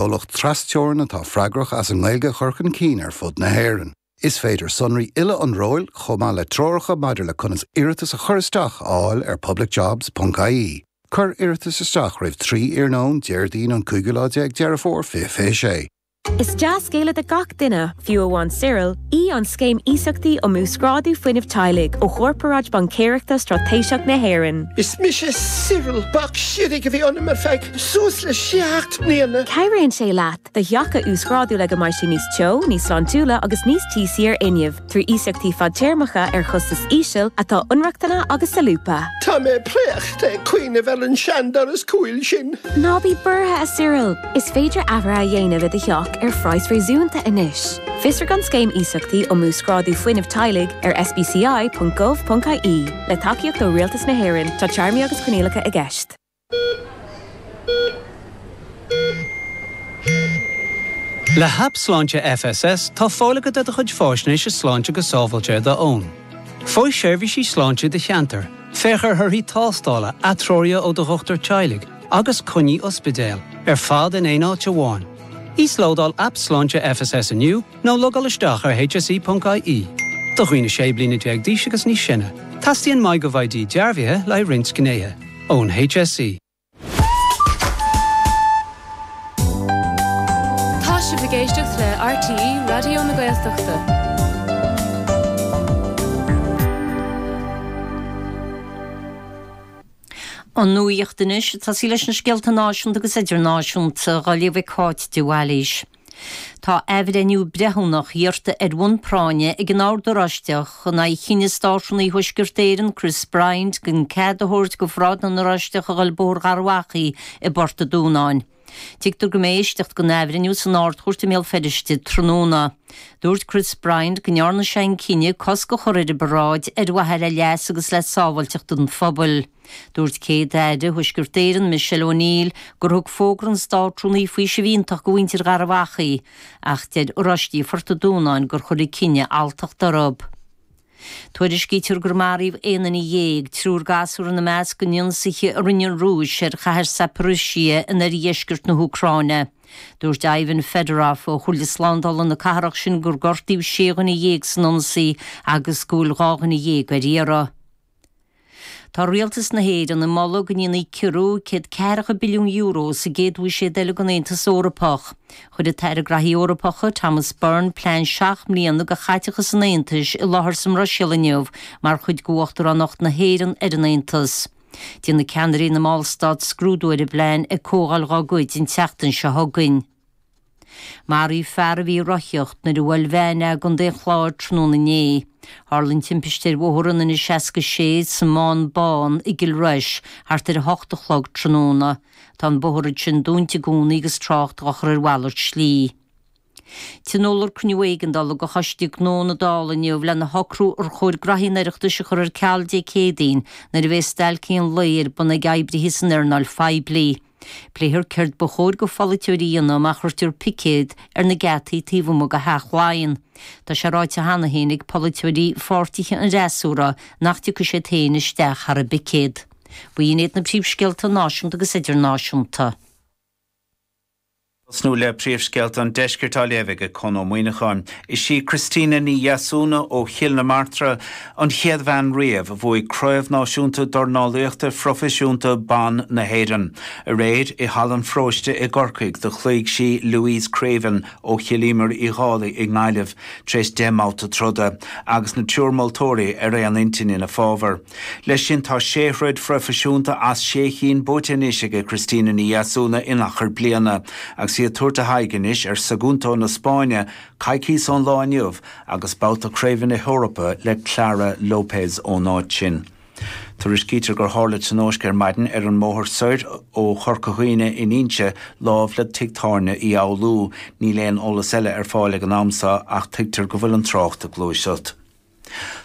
comhlacht tras-teorann atá freagrach as an nGaeilge a chur chun cinn ar fud na hÉireann. Is féidir sonraí uile an róil, chomh maith le treoracha maidir le conas iarratas a chur isteach, a fháil ar publicjobs.ie. Cuir iarratas isteach roimh 3 iarnóin Déardaoin an cúigiú lá déag Deireadh Fómhair 2026. Is dea-scéal é do gach duine! Fiú amháin Cyril, í an Scéim Iasachtaí um Uasghrádú Fuinnimh Teaghlaigh ó Chorparáid Baincéireachta Straitéiseach na hÉireann. Is mise Cyril. Bacs siorradh a bhí ionam ar feadh suas le seacht mbliana. Cabhraíonn sé leat do theach a uasghrádú le go mbeidh sé níos teo, níos sláintiúla agus níos tíosaí ar fhuinneamh, trí iasachtaí fadtéarmacha ar chostas íseal atá inrochtana agus solúbtha. Tá mé préachta ag cuimhneamh ar an seandoras cúil sin. Ná bí buartha, a Cyril! Is féidir athruithe a dhéanamh i do theach ar phraghas réasúnta anois. Fiosraigh an Scéim Iasachtaí um Uasghrádú Fuinnimh Teaghlaigh ar sbci.gov.ie. Le tacaíocht ó Rialtas na hÉireann, tá téarmaí agus coinníollacha i gceist. Le hAip Sláinte FSS, tá fáil agat ar do chuid faisnéise sláinte go sábháilte ar do fhón. Faigh seirbhísí sláinte i do cheantar, féach ar thorthaí tástála, atreoruithe ó do dhochtúir teaghlaigh, agus coinní ospidéil ar fad in aon áit amháin. Íoslódáil Aip Sláinte FSS inniu nó logáil isteach ar hse.ie. Do dhaoine 16 bliana d'aois agus níos sine, teastaíonn MyGovID dearbhaithe le roinnt gnéithe ón HSE. Tá sibh ag éisteacht le RTÉ Raidió na Gaeltachta. An nuacht anois a sé leis na scéalta náisiúnta agus idirnáisiúnta dá léamh ag Cáit de Bhailís. Tá athbhreithniú breithiúnach iarrta ar bhun práinne ag an Ord Oráisteach in aghaidh chinneadh Státrúnaí Thuaisceart Éireann, Chris Bryant, gan cead a thabhairt do pharáid na nOráisteach a dhul Bóthar Gharbh Achaidh i bPort a Dúnáin. Tuigtear go mbeidh éisteacht den athbhreithniú san Ard-Chúirt i mBéal Feirste tráthnóna. Dúirt Chris Bryant go ndearna sé an cinneadh cosc a chur ar an bparáid ar mhaithe le leas agus le sábháilteacht an phobail. Dúirt Céad-Aire Thuaisceart Éireann Michelle O'Neill gur thug fógra an Státrúnaí faoiseamh iontach do mhuintir Gharbh Achaidh ach deir Oráistigh Phort an Dúnáin gur chuir an cinneadh alltacht orthu. Tuairiscítear gur maraíodh aon duine dhéag, triúr gasúr ina measc, in ionsaithe a rinne an Rúis ar chathair Zaporizhzhia in oirdheisceart na hÚcráine. Dúirt Ivan Fedorov ó Chomhairle Slándála na cathrach sin gur gortaíodh sé dhuine dhéag san ionsaí agus go bhfuil dhá dhuine dhéag ar iarraidh. Tá rialtas na hÉireann ag moladh go ndéanfaí ciorrú céad ceathracha billiún euro sa gcéad bhuiséad eile den Aontas Eorpach. Chuir an tAire Graithí Eorpacha, Thomas Byrne, plean seacht mbliana do chaiteachas an Aontais i láthair sa mBruiséil inniu mar chuid d'Uachtaránacht na hÉireann ar an Aontas. Déanfaidh ceannairí na mballstát scrúdú ar an bplean ag comhdháil dhá gcuid an tseachtain seo chugainn. Maraíodh fear a bhí ag rothaíocht nuair a bhuail veain é i gContae an Chláir tráthnóna inné. Tharla an timpiste ar bhóthar an N67 sa mBán Bán i gCill Rois thart ar 8 a chlog tráthnóna. Tá an bóthar sin dúnta i gcónaí agus trácht á chur ar mhalairt slí. Tionóladh cruinniú éigeandála de Choiste Gnó na Dála inniu lena shocrú ar chóir graithí an Oireachtais a chur ar ceal Dé Céadaoin nuair a bheidh stailc aon lae ar bun ag oibrithe san earnáil phoiblí. Pléifear céard ba chóir do pholaiteoirí a dhéanamh má chuirtear picéad ar na geataí taobh amuigh de Theach Laighean. Tá sé ráite cheana féin ag polaiteoirí pháirtithe an fhreasúra nach dtiocfaidh siad féin isteach thar an bpicéad. Bhuel, sin iad na príomhscéalta náisiúnta agus idirnáisiúnta. tosnú le príomhscéalta an deiscirt á léamh aige Con Ó Muíneacháin. Is í Christina Ní Dheasúna ó Chill na Martra an chéad bhean riamh a bhuaigh Craobh Náisiúnta Dornálaíochta Phroifisiúnta Ban na hÉireann. Aréir, i Halla an Pharóiste i gCorcaigh, do chloígh sí Louise Creaven ó Chill Íomair Uí Dhálaigh i nGaillimh tar éis deich mbabhta troda, agus an triúr moltóirí ar aon intinn ina fábhar. Leis sin, tá sé throid phroifisiúnta as sé chinn buaite anois aige Cristina Ní Dheasúna in achar bliana, agus í ag tabhairt a haghaidh anois ar Sagunto na Spáinne coicís ón lá inniu agus babhta craoibhe na hEorpa le Clara Lopez ón áit sin. Tuairiscítear gur tharla tionóisc ar maidin ar an mbóthar soir ó Chorca Dhuibhne in Inse, lámh le tigh tábhairne Uí Fhoghlú. Níl aon eolas eile ar fáil ag an am seo ach tuigtear go bhfuil an trácht ag gluaiseacht.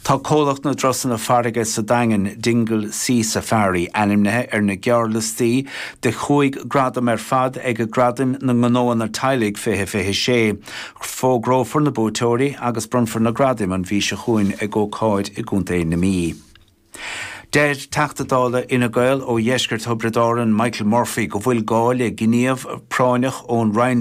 Tá comhlacht na dturasanna farraige sa Daingean, Dingle Sea Safari, ainmnithe ar na gearrliostaí de chúig ghradam ar fad ag Gradaim na nGnóanna Teaghlaigh 2026. Fógrófar na buaiteoirí agus bronnfar na gradaim an mhí seo chugainn ag ócáid i gContae na Mí. Deir Teachta Dála Fhine Gael ó Dheisceart Thiobraid Árann Michael Murphy go bhfuil gá le gníomh práinneach ón Roinn